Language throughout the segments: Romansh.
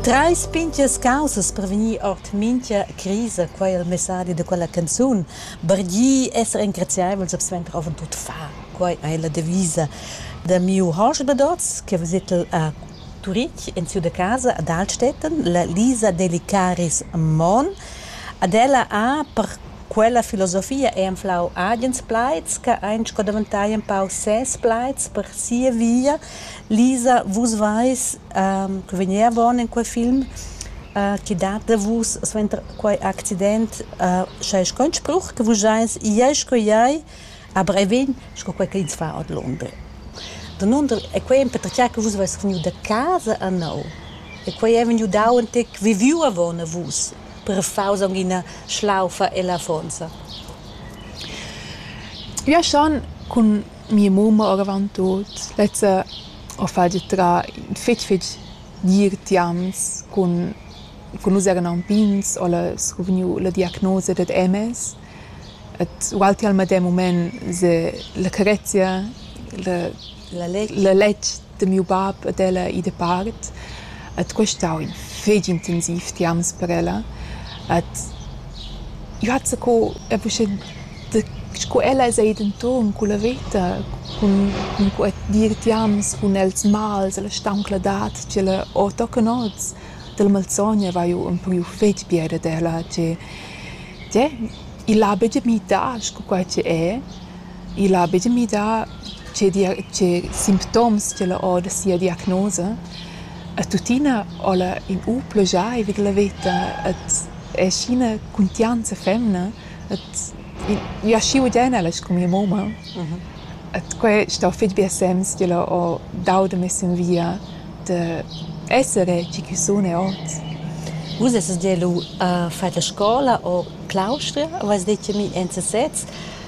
Trais pintgas caussas per vegnir ord mintga crisa, quai è il messadi da quella canzun. Bargir, esser engraziaivels e suenter avant tut far. Quai è la devisa da miu hosp dad oz che visitel a Turitg en siu da casa ad Altstätten, la Lisa Delicaris Mon. Ad ella ha per quella filosofia ei anflau agens plaids che ein sco daventai empau ses plaids per sia via. Lisa, vus veis ehm che vegnia bon in quei film, che dat da vus suenter quei accident sch'ei sconspruch che vus eis iei sco iei, aber ei vegn sco quei ch'ins fa ordlunder. Danunder e quei empertgei che vus veis vegniu da casa enneu e quei ei vegniu dau entec viviu avon a vus per far aunc ina schlaufa ella affonza. Io sun cun Mia mumma oravant tuot. Lezza ho fatg trar fich fich dir tians cun cun nus eran alpins, ho la scuvgniu la diagnosa dad MS et ualti al medem mumaint se la carezia, la la lètg. da miu bab ed ella ì dapart ed quest aun fetg intensiv tiarms per ella. Ed jeu ha zaccau er buca da sco ella sei denton culla veta cun cun quei dir tiarms cun els mals e la stauncladad ch'ella ha tochen oz. Dalla malsogna vai jeu empriu fetg bia dad ella che, tgè, igl ha buca mi dà sco quei che è. igl ha buca midà tgei dia- tgei simptoms ch'el ha ora sia diagnosa. E tuttina ho ella in u pluschaiva ch'ella veta et è aschi ina cuntianza femna et i- i aschi udian ella scu mia mumma. Et quei sto fetg bia sems ch'ella ho dau da mess in via da essere tgi ch'eu sun e hoz. Vus essas gia lu a fat la scola a Claustria, avais detg a mi enzatgets.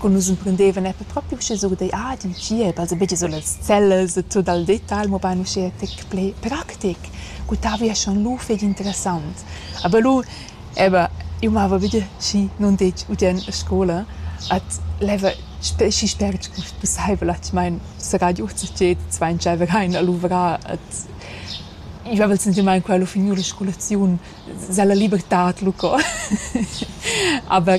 Cun nus emprendevan eir per propi usche surdar ah ed in tschiep, also be già sur las cellas e tuot al detal, mobain usche fich plü practic. Cul tavi es schon lù fich interessant. Aber lù, eba, eu mava be schi nun ditg udiern a scoula at leva schi spert scu pussaivel atgmaint serrà giò hoz a tsiet, dvaintschaiva rain a luvrar et i vaiva il sentimaint quel ho finieu la scolaziun, s'ha la libertad lu co. Aber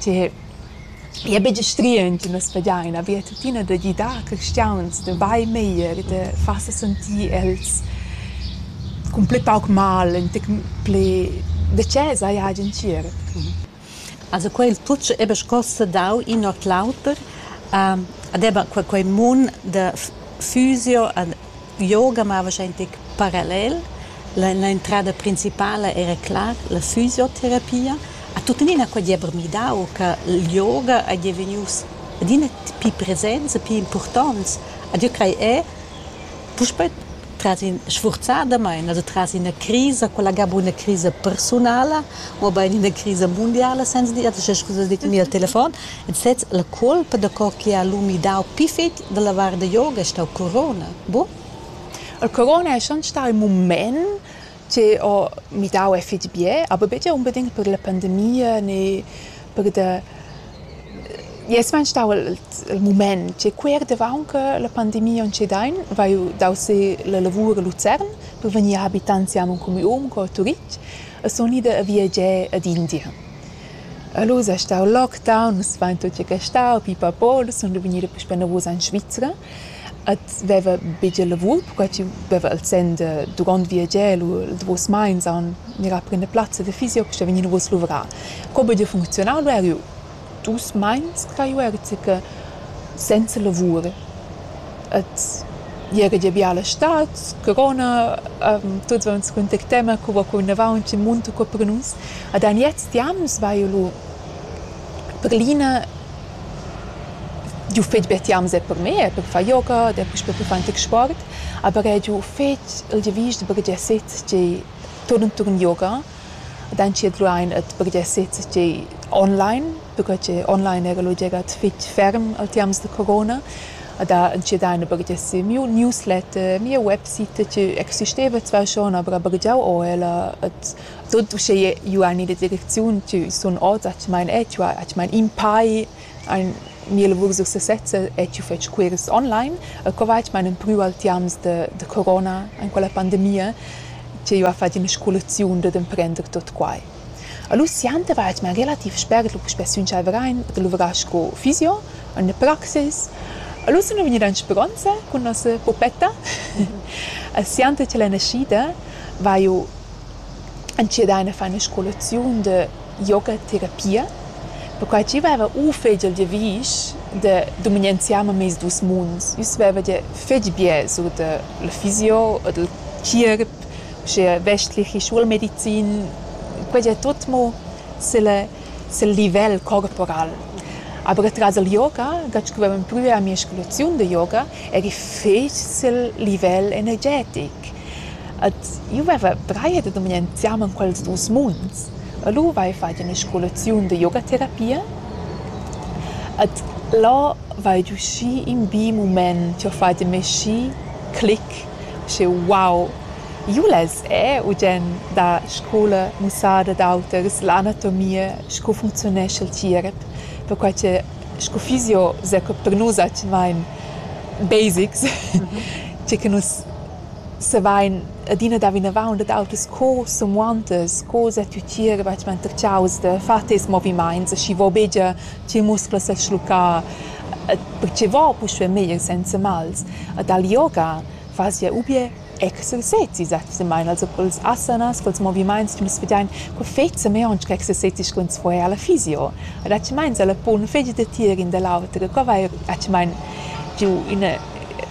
Ti i è betg strient da spetgar ina via tuttina da gidar cristians da bain meglier, da far sa sentir els cun pli pauc mal, entg pli decis haja agen tgierp. Also quei il tut sch'ei be scossa dau in ord l'auter, ed eba quei mund da fusio Yoga mava sch'ei in tec parallel. La, l'entrada principala era clar la fisioterapia. Ha tuttenina quei diever midau che il yoga ei devenius adina pli presents e pli impurtonts. Ed jeu crei era puspei tras in sfurzadamain, also tras ina crisa, quella ga buna crisa persunala, mobein ina crisa mundiala, senza dir, also sche scusas ditg, ni al telefon, In sez, la cuolpa daco che ha lu midau pli fetg dalla vardayoga, ei stau corona. Bu? Il corona è schon stà ün mumaint che ho midau e fich bger, aber betg unbedingt per la pandemia ne per da... Es vain stau il il mumaint che quer davaunt che la pandemia aunc dain, vaiu dau se la lavur a Luzern per vegnir habitants siamo in comün co a Turitg e sun ida a viager ad India. E lu s'ei stau lockdown, nus vein tut gia gastau, pipapo, lu sun jeu vegnida puspei enavos en Svizra ed veva buca lavur perquei ch'jeu veva il senn de duront viagiar lu il davos meins a mirar per ina plazza da fisio puspei vegnir enavos a luvrar. Co buca funcziunau lu era jeu. Dus meins crei jeu era buca senza lavur. Et jega gia biala stad, corona, tuts vaun contactemma co va curnavaunt, chi munta co per nus. Ed aniez di amo nus vaiu lur. Per l'ina giu fetg be ti amo set per me, per far yoga, dapuspe per far ün tec sport, aber er giu fetg il giavüsch da baghegiar sez tgei turn turn yoga. Ed entschiet lu ein ad buca sezer tgei online, perquei che online era lu gia fetg ferm al tiams da corona. Ed ha entschiet ein a buca esser miu newsletter, mia website che existeva zwar schon, aber ha buca giau o ella. Ed tut uschè iu ein ina direcziun che sun oz atgnamein etg, atgnamein in pai. Ein mia lavur successa e jeu fetsch quirs online. E co va mein empriu al tiams da da corona en quella pandemia che jeu ha fatg ina scolaziun dad emprender tot quai. Allura sienter va mein relativ spert lu puspè sün Chavrein da luvrar sco fysio en la praxis. Allura sun gnüda in speronza cun nossa pupetta e sienter che l'ei naschida vaiu entschiet ein a far ina scolaziun da yogaterapia, perquai ch'eu vaiva u fegia il giavüsch da dumangianziar a meis duos munds. Ins vaiva gia fetg bger sur da la fisio o dal tschierp, uschea vestlich e schulamedizin. Quai gia tut mo sül sül livel corporal. Aber atras al yoga, dat scrivavan plü a mia scolaziun da yoga, eri fetg sül livel energetic. Ed io vaiva braia da dumignar insiama in quels duos munds. E lura vain fat üna scolaziun da yogaterapia ed là vain giü schi ün bi mumaint. Jau ho fat in me schi clic, schi wow! Io less eir ugiend da scoula mussar ad auters l'anatomia, scu funcziunesch il tierep, perquai che scu fizio s'ha per nus atgnain basics, tge che nus Savein adina dar vinavon dad autras co samuontas, co zatgutier batgement da tgiaus da far tes movimaints, schi vo buca ch'il muscul sa schluccar, pertgei vo puspei meglier senza mals. E dal yoga fas jeu ubier exercezis atgnamein, also culs asanas, culs movimaints che nus vedein co fetza mei aunc exercezis cun square alla fysio. Ed atgnamein sa la pon fetg da tier in da l'auter, e co vai atgnamein giu ina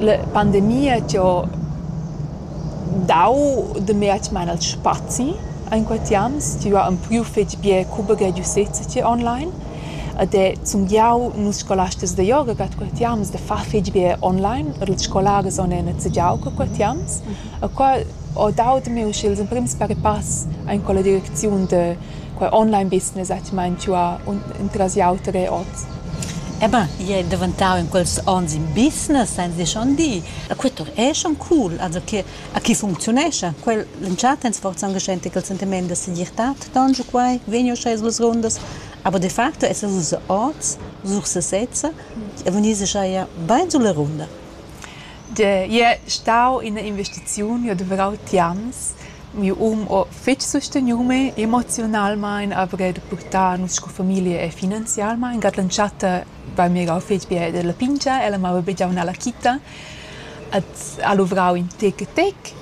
La pandemia chi ho dau da meir chi maina al spazi in questi ans tü ha ün pü fetg bien cuba gragiusezza chi online ed è sun giau nus scolastas da yoga cat questi ans da far fetg bien online er ils scolaris on e nezegiau co questi ans e qua ho dau da mê usche ils emprims par e pass aint culla direcziun da quei online business ha ti meintuà entras auter e ot. Eh ben, i è daventau in quels onns in business, ein si schon di. E quei tur è schon cool, also che a chi funcziunescha. Quel l'entschatta ein sforza anche scenti quel sentiment da segirtad, don giu quei, vegn uschè suas rundas. Aber de facto es vus oz, sur sesezza, e vegnis uschè ja bein sulla runda. Jeu stau ina investiziun, jeu duvrau tians. Miu um ho fetg susteniu me, emoziunalmein avrei da purtar nus sco famiglia e finanzialmein. Gat l'entschatta va mirau fetg bia dalla pingia, ella mava bigiau nella quita et ha luvrau in tec e tec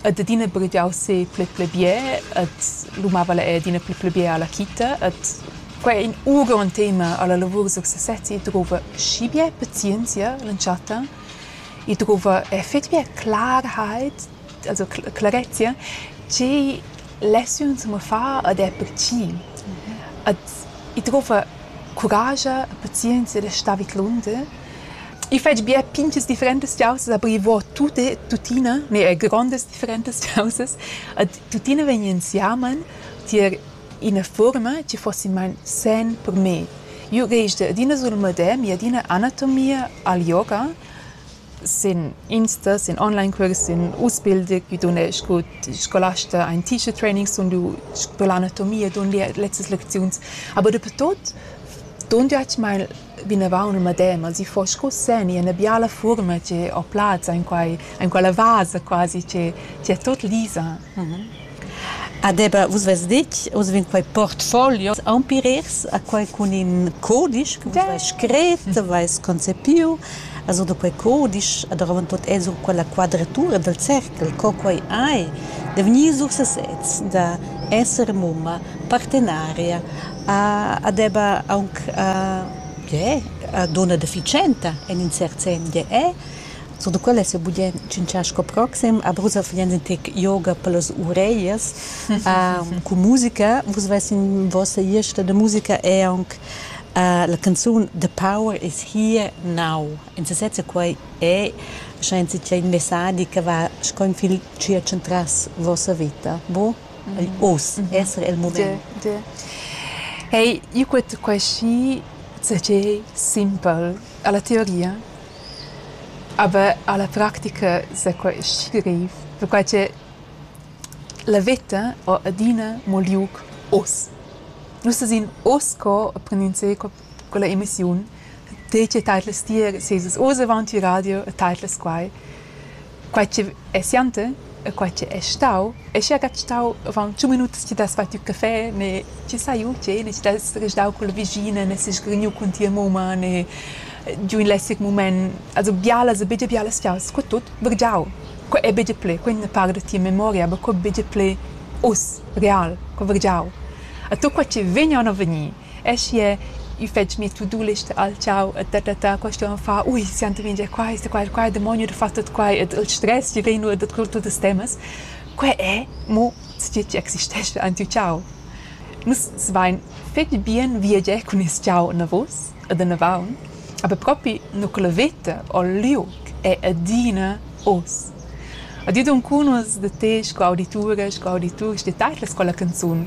et adina purtau se pli pli bia et lu mava el adina pli pli bia alla quita et quei ei in uront tema alla lavur sur sesezi. Drova schi bia pazienzia l'entschatta. I druva effectivament clarheit, also clarezia, che lecziuns mo far ed è per chi. Ed i druva curascha e pazienzia da stà vidlunder. I fetsch bia pinchas differentas chaussas, aber i vo tut tuttina, ne er grondas differentas chaussas. Ed tuttina vegn insiamen tier Ina furma chi fossi main sen per me. Io gest adina sul madè mia adina anatomia al yoga. Sin Insta, sin online-cuors, sin Ausbilder chi dun scu scolasta aint teacher training sun lur sco l'anatomia dun lur lezzas lecziuns. Aber dapertut dun tü atg main vinavant ün medem, as i fo scu segni üna biala fuorma che ho plazza in quai in quella vasa quasi che che è tot lisa. Ah Debra, vus vess ditg, oz vegn quai portfolios aunch'piers a quai cun in cudisch che vus vais scret, vais concepiu, also da quei cudisch e davantot è sur quella quadratura dal cerchel, co quai ei, da gnir sur sesez, da esser mumma, partenaria, a deva aunc gie dunna deficienta en in cert senn, gie è. Sur da quella s'ha budien tschintschar sco proxim. A Brusel fagiens in tec yoga per las ureglias cun musica. Vus veis in vossa ierta da musica è aunc la canzun The Power is here now. En sesezza quei è, sche ins in messadi che va sco in fil tschiertsch entras vossa vita. Bu? ei oz esser el mument. Hey, io quet queschi tgei simpel alla teoria, aber alla practica sa quei schi grev, perquai che la veta ho adina mo liug oz. Nus esin oz co e prendind sco quella emissiun detg e teit las tier sesas oz avon il radio e teit las quai quai che è siante e quai che è stau e sche gat stau avon tschun minutas ti das fatg il caffè ne ti sai u che ne ti das resdau quella vischina ne si sgrigniu cun tia mumma ne giu in lessig mument also bialas e bigie bialas fiaus co tut vergiau co è bigie ple quei ne par da tia memoria aber co bigie ple us real co vergiau a tu qua che vegna o non vegni Aschia il fatg mi tudulist al tgau e ta ta ta questa uonn fa ui sienter mintga quai sta quai quai demoniu da far tut quai ed il stress che vegn nuot da tut tuttas temas quei è mo tgi che existescha en tiu tgau nus svein fetg bien viagiar cun nies tgau anavos ed anavaun aber propi nu que la veta o il liug è adina oz a di duncun uss da te sco auditura sco auditurs detagls con la canzun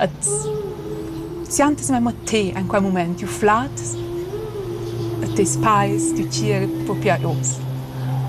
Et siantas memma te en quei mument jeu flatas e tes pais, tü tgiel propi ei oz.